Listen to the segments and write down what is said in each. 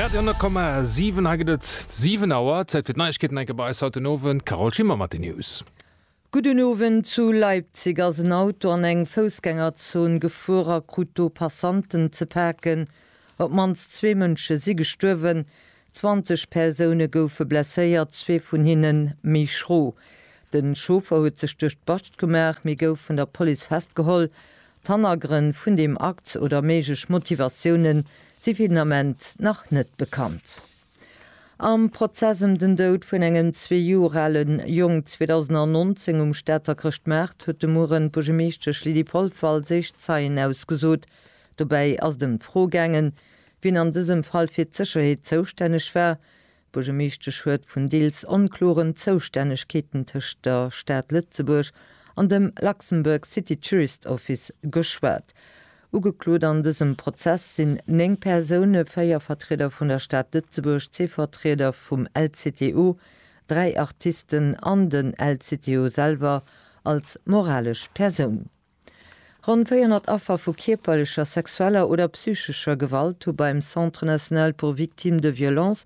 Radio 10,7, hei gëtt et 7 Auer. Zäit fir d'Neiegkeeten enke bei eis haut den Owend. Carole Schimmer mat den News. Gudden Owend, Zu Leipzig ass en Auto an eng Foussgängerzon gefuer a krut do Passanten ze paken. Op d'mannst zwee Mënsche si gestuerwen, 20 Persoune goufe blesséiert, zwee vun hinne méi schro. Den Chauffer huet sech duerch d'Bascht gemaach, mee gouf vun der Police festgeholl. D'Hannergrënn vun deem Akt oder méiglech Motivatioune si fir den Ament nach net bekannt. Am Prozess ëm den Doud vun engem zwee Joer ale Jong 2019 um Stater Chrëschtmaart huet de Mueren d'Buergermeeschtesch Lydie Polfer als éischt Zeien ausgesot. Dobäi ass et ëm d'Fro gaangen, wien an dësem Fall fir d'Sécherheet zoustänneg war, D'Buergermeeschtesch huet vun deels onkloren Zoustännegkeeten tëscht der Stad Lëtzebuerg an dem Luxembourg City Tourist Office geschwat. Ugeklot an dësem Prozess sinn néng Persoune, véier Vertrieder vun der Stad Lëtzebuerg, zwee Vertrieder vum LCTO, dräi Artisten an den LCTO selwer als moralesch Persoun. Ronn 400 Affer vu kierperlecher, sexueller oder psychescher Gewalt hu beim Centre national pour victimes de violences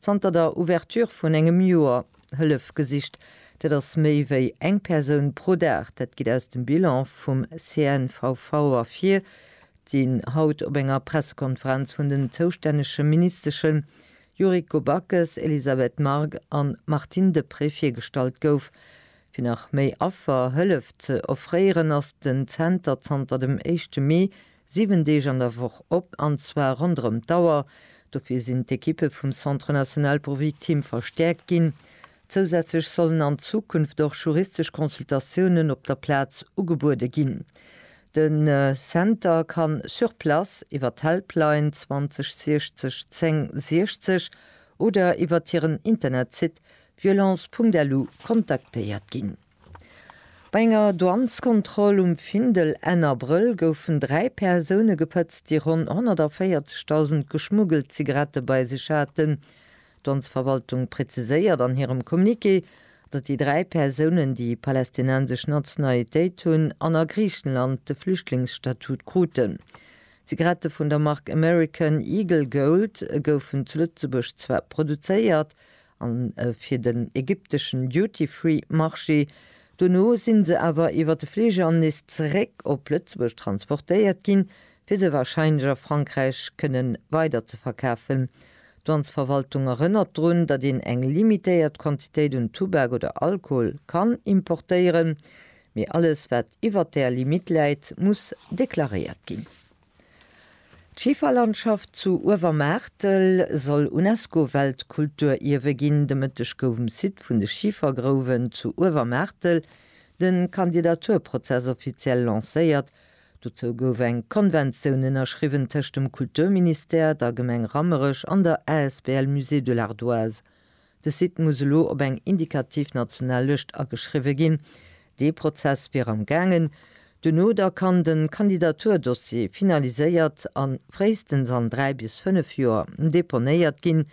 zanter der Ouverture vun engem Joer Hëllef gesicht. Dat ass méi wéi eng Persoun pro Dag. Dat geet aus dem Bilan vum CNVV ervir, deen haut op enger Pressekonferenz vun den zoustännege Ministeschen Yuriko Backes, Elisabeth Margue an Martine Deprez virgestallt gouf. Fir nach méi Affer Hëllef ze offréieren, ass den Zenter zanter dem éischte Mee 7 Deeg an der Woch op, an zwar ronderëm d'Auer. Dofir sinn d'Ekippe vum Centre national pour victimes verstäerkt ginn. Zousätzlech sollen an Zukunft och juristesch Consultatiounen op der Plaz ugebuede ginn. De Zenter ka sur place, iwwer d'Helpline 20 60 10 60 oder iwwert hiren Internetsite Violence.lu kontaktéiert ginn. Bei enger Douaneskontroll um Findel Enn Abrëll goufen dräi Persoune gepëtzt, déi ronn 140.000 geschmuggelt Zigarette bei sech haten. D'Douanesverwaltung preziséiert an hirem Communiqué, datt déi dräi Persounen déi palästinensesch Nationalitéit hunn an a Griichenland de Flüchtlingsstatut kruten. Zigarette vun der Mark American Eagle Gold goufen zu Lëtzebuerg zwar produzéiert, A fir den ägypteschen Duty-Free Marché. Dono sinn se awer iwwer de Fliger an nees zeréck op Lëtzebuerg transportéiert ginn, fir se warscheinlech a Frankräich kënnen weider ze verkafen. D'Douanesverwaltung erënnert drun, datt een eng limitéiert Quantitéit un Tubak oder Alkohol kann importéieren, mee alles wat iwwert där Limite läit, muss deklaréiert ginn. D'Schiferlandschaft zu Uewermaartel soll UNESCO-Weltkulturierwe ginn. De Mëtteg gouf um Site vun de Schifergrouwen zu Uewermaartel de Kandidaturprozess offiziell lancéiert. Dozou gouf eng Konventioun ënnerschriwwen tëscht dem Kulturministère, der Gemeng Rammerech an der asbl Musée de l'Ardoise. De Site muss elo op eng indikativ national Lëscht ageschriwwe ginn. Dee Prozess wier am gaangen. Duerno da kann de Kandidaturdossier finaliséiert an fréistens an dräi bis fënnef Joer deponéiert ginn.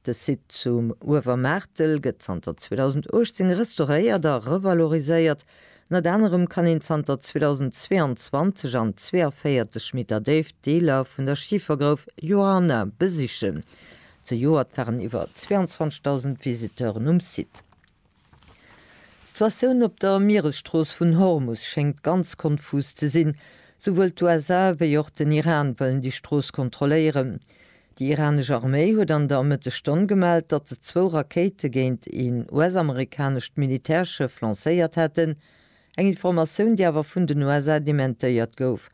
De Site zum Uewermaartel gëtt zanter 2018 restauréiert a revaloriséiert. Ënnert anerem kann een zanter 2022 an 42 Meter Déift Deeler vun der Schifergrouf Johanna besichen. Zejoert waren iwwer 22.000 Visiteuren um Site. D'Situatioun op der Mieresstrooss vun Hormus schéngt ganz konfus ze sinn. Souwuel d'USA wéi och den Iran wëllen déi Strooss kontrolléieren. Déi iranesch Arméi huet an der Mëttesstonn gemellt, datt se zwou Rakéite géint een US-amerikanescht Militärschëff lancéiert hätten. Eng Informatioun, déi awer vun den USA dementéiert gouf.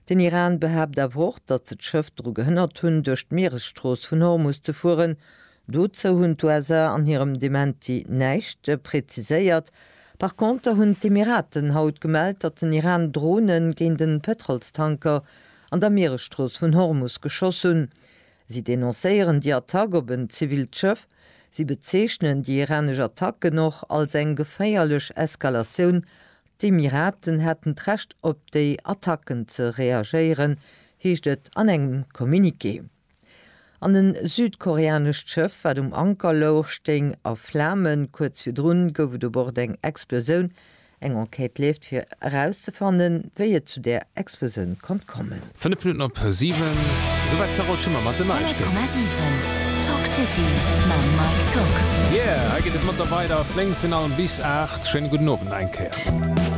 Den Iran behaapt awer och, datt se d'Schëff dru gehënnert hunn, duerch d'Mieresstrooss vun Hormus ze fueren. Dozou hunn d'USA an hirem Dementi näischt preziséiert. Par Konter hunn d'Emiraten haut gemellt, datt den Iran Drone géint e Pëtrolstanker an der Mieresstrooss vun Hormus geschoss hunn. Si denoncéieren déi Attack op en zivilt Schëff. Si bezeechnen déi iranesch Attacken och als eng geféierlech Eskalatioun. D'Emiraten hätten d'Recht op déi Attacken ze reagéieren, heescht et an engem Communiqué. An en südkoreanescht Schëff, wat um Anker louch, stéing a Flamen. Kuerz virdrun gouf et u Bord eng Explosioun, Eng Enquête leeft fir erauszefannen, wéi et zu där Explosioun konnt kommen. Fënnef Minutten op siwen, esou war d'Carole Schimmer mat den Neiegkeeten. 100,7 Talk City mam Mike Tock. Yeah, hei geet et mat der weider Fléng vun allem bis 8. Schéine gudden Owend nach eng Kéier.